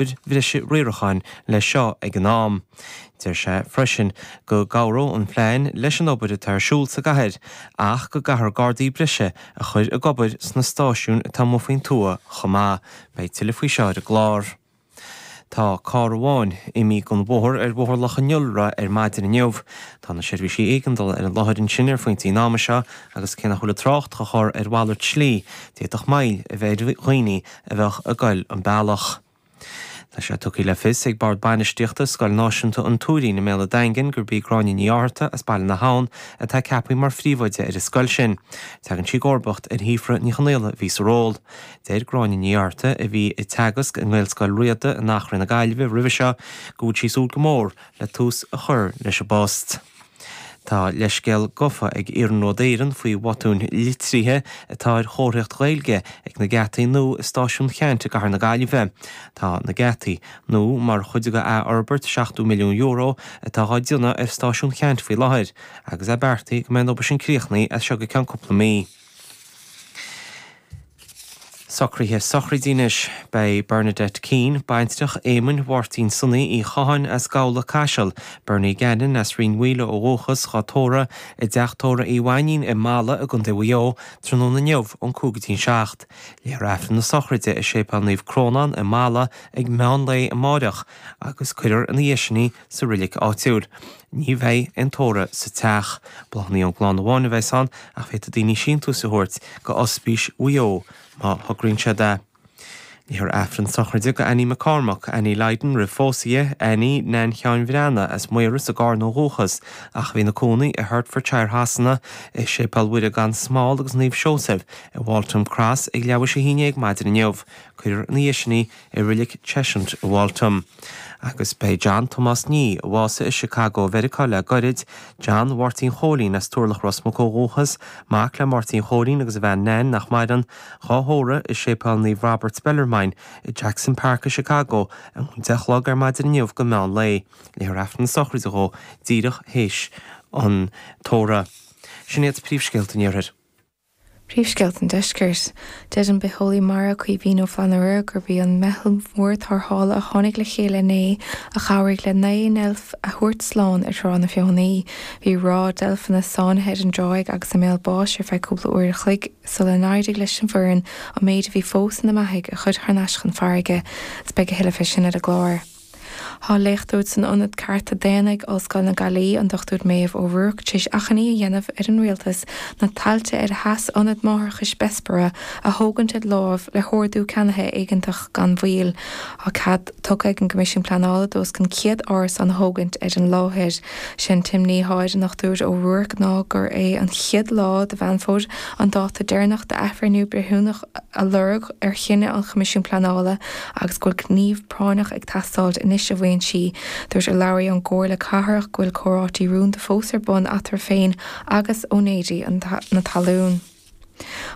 obair bhreise riaracháin le seo ag an am. Deir sé freisin go gcabhróidh an phlean leis an obair atá ar siúl sa gcathair ach go gcaithfear gardaí breise a chur ag obair sna stáisiúin atá amuigh faoin tuath chomh maith. Beidh tuilleadh faoi seo ar an gclár. Tá carr amháin imí den bhóthar ar Bhóthar Loch an Iolra ar maidin inniu. Tá na seirbhísí éigeandála ar an láthair ansin ar phointí an ama seo agus cé nach bhfuil an trácht dhá chur ar mhalairt slí, d'fhéadfadh moill a bheith ar dhaoine a bheadh ag goil an bealach. Tá sé tugtha le fios ag Bord Bainistíochta Scoil Náisiúnta an Tuairín i mBéal a' Daingin gurb í Gráinne Ní Fhátharta as Baile na hAbhann atá ceapaithe mar phríomhoide ar an scoil sin. Teagann sí i gcomharbacht ar Shíofra Ní Chonaola a bhí sa ról. Deir Gráinne Ní Fhátharta, a bhí ag teagasc i nGaelscoil Riada in Achréidh na Gaillimhe roimhe seo, go bhfuil sí ag súil go mór le tús a chur leis an bpost. Tá leithscéal gofa ag Iarnród Éireann faoi bhotúin litrithe atá ar chomharthaíocht Ghaeilge ag na geataí nua i Stáisiún Cheaint i gcathair na Gaillimhe. Tá na geataí nua mar chuid de athfhorbairt €70 milliún atá dhá déanamh ar Stáisiún Cheaint faoi láthair, agus é beartaithe go mbeidh an obair sin críochnaí as seo go ceann cúpla mí. Socraithe sochraide anois. Beidh Bernadette Keane, baintreach Éamoinn Mháirtín Sonaí Uí Chatháin as Gabhla, Caiseal, Bernie Gannon, as Rinn Mhaoile ó dhúchas, dhá tórramh i dTeach Tórraimh Uí Mhainnín i mBalla i gContae Mhaigh Eo tráthnóna inniu ón cúig go dtí an seacht. Léifear Aifreann na sochraide i Séipéal Naomh Crónán i mBalla ag meán lae amáireach agus cuirfear ina dhiaidh sin í sa roilig áitiúil. Ní bheidh aon tórramh sa teach. Bláthnaí ón gclann amháin a bheas ann ach féadfaidh daoine síntiúis a thabhairt go Ospís Mhaigh Eo má thograíonn siad é. Léifear Aifreann sochraide go Annie McCormack, Annie Lydon roimh phósadh dhi, Annie, Neain Sheáin Bhreathnaigh as Maíros i gCarna ó dhúchas ach a bhí ina cónaí i Hertfordshire Shasana, i Séipéal Mhuire gan Smál agus Naomh Seosaimh i Waltham Cross ag leathuair théis a haon déag ar maidin inniu. Cuirfear ina dhiaidh sin í. i Reilig Cheshunt i Waltham. Agus beidh John Tomás Nee, a bhásaigh i Chicago Mheiriceá le gairid, John Mháirtín Chóilín as Turlach Ros Muc ó dhúchas, mac le Máirtín Chóilín agus a bhean Nain, nach maireann, dhá thórramh i Séipéal Naomh Robert Bellarmine i Jackson Park i Chicago óna deich a chlog ar maidin inniu go meán lae. Léifear Aifreann sochraide dhó díreach théis an tórraimh. Sin iad príomhscéalta an iarthair. Príomhscéalta an Deiscirt. Deir an bitheolaí mara Caoimhín Ó Flannabhra gurb í an mheitheal mhór tarrthála a tháinig le chéile inné a chabhraigh le naoi ndeilf a thabhairt slán ar Thrá na Feothanaí. Bhí ráth deilfeanna sáinnithe ar an dtráigh agus i mbéal báis ar feadh cúpla uair a chloig sular éirigh leis an bhfoireann an méid a bhí fós ina mbeathaigh a chur thar n-ais chun farraige. Beidh a thuilleadh fé sin ar an gclár. Tá léachtóir san Ionad Cearta Daonna ag Ollscoil na Gaillí, an Dr Maeve O'Rourke, tar éis achainí a dhéanamh ar an rialtas na tailte ar a sheas Ionad Máithreachais Bessborough a thógaint ar láimh le hordú ceannaithe éigeantach gan mhoill. Tá cead tugtha ag an gCoimisiún Pleanála d'os cionn 100 árasán a thógaint ar an láthair. Sé an t-imní atá ar an nDochtúir O'Rourke ná gurb é an chéad lá de Mheán Fómhair an dáta deireanach d'athbhreithniú breithiúnach a lorg ar chinneadh an Choimisiúin Pleanála agus go bhfuil práinneach ag teastáilt anois, a mhaíonn sí. Dúirt urlabhraí ón gComhairle Cathrach go bhfuil comhráití rúnda fós ar bun eatarthu féin agus úinéirí na talún.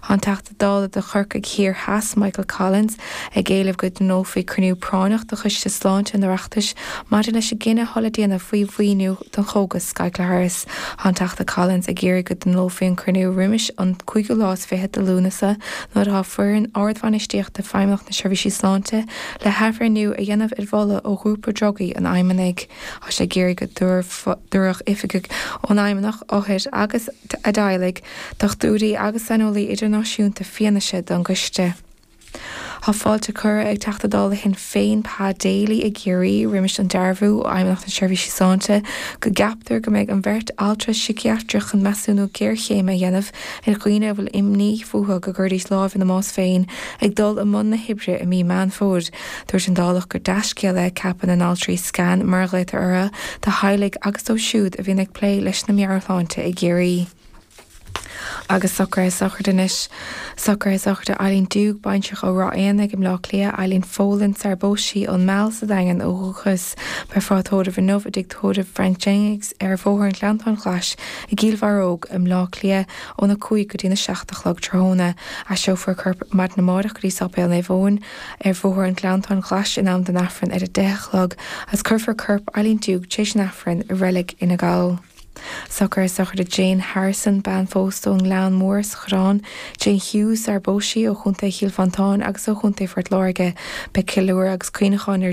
Tá an Teachta Dála do Chorcaigh Thiar Theas, Michael Collins, ag éileamh go dtionólfaí cruinniú práinneach de Choiste Sláinte an Oireachtais maidir leis an gcinneadh atá le déanamh faoi mhaoiniú don chógas Skyclarys. Tá an Teachta Collins ag iarraidh go dtionólfaí an cruinniú roimis an cúigiú lá is fiche de Lúnasa, nuair atá foireann ardbhainistíochta Feidhmeannacht na Seirbhísí Sláinte, Le hathbhreithniú a dhéanamh ar mholadh ó ghrúpa drugaí an fheidhmeannaigh, tá sé ag iarraidh go dtabharfadh oifigigh ón fheidhmeannach othair agus a dteaghlaigh, dochtúirí agus saineolaí idirnáisiúnta fianaise don gcoiste. Tá fáilte curtha ag Teachta Dála Shinn Féin Pa Daly i gCiarraí, roimis an dearbhú ó Fheidhmeannacht na Seirbhísí Sláinte, go gceaptar go mbeidh an bheirt altra siciatrach chun measúnú géarchéime a dhéanamh ar dhaoine a bhfuil imní fúthu go gcuirfidís lámh ina mbás féin ag dul i mbun na hoibre i mí Meán Fómhair. Dúirt an Dálach gur dea-scéal é ceapadh na n-altraí SCAN, mar a ghlaotar orthu, do theaghlaigh agus dóibh siúd a bhíonn ag plé leis na meabhairshláinte i gCiarraí. Agus socraithe sochraide anois. Socraithe sochraide Eileen Duke, baintreach ó Ráth Éanaigh i mBleá Cliath, Eileen Folan, sar a bpós sí, ón Meal sa Daingean ó dhúchas. Beifear á tórramh inniu i dtigh tórraimh Frank Jennings ar Bhóthar an Ghleanntáin Ghlais i gCill Bharróg i mBleá Cliath óna 5 go dtína 7 a chlog tráthnóna, aistreofar corp maidin amárach go dtí Sáipéal Naomh Eoin ar Bhóthar an Ghleanntáin Ghlais in am don Aifreann ar a 10 a chlog agus cuirfear corp Eileen Duke tréis an Aifrinn i Reilig Fhine Gall. Socraithe sochraide Jane Harrison, bean phósta ón nGleann Mór sa Choireán, Jane Hughes, sar a bpós sí, ó Chontae Chill Mhantáin agus ó Chontae Phort Láirge. Beidh ceiliúradh agus cuimhneachán ar.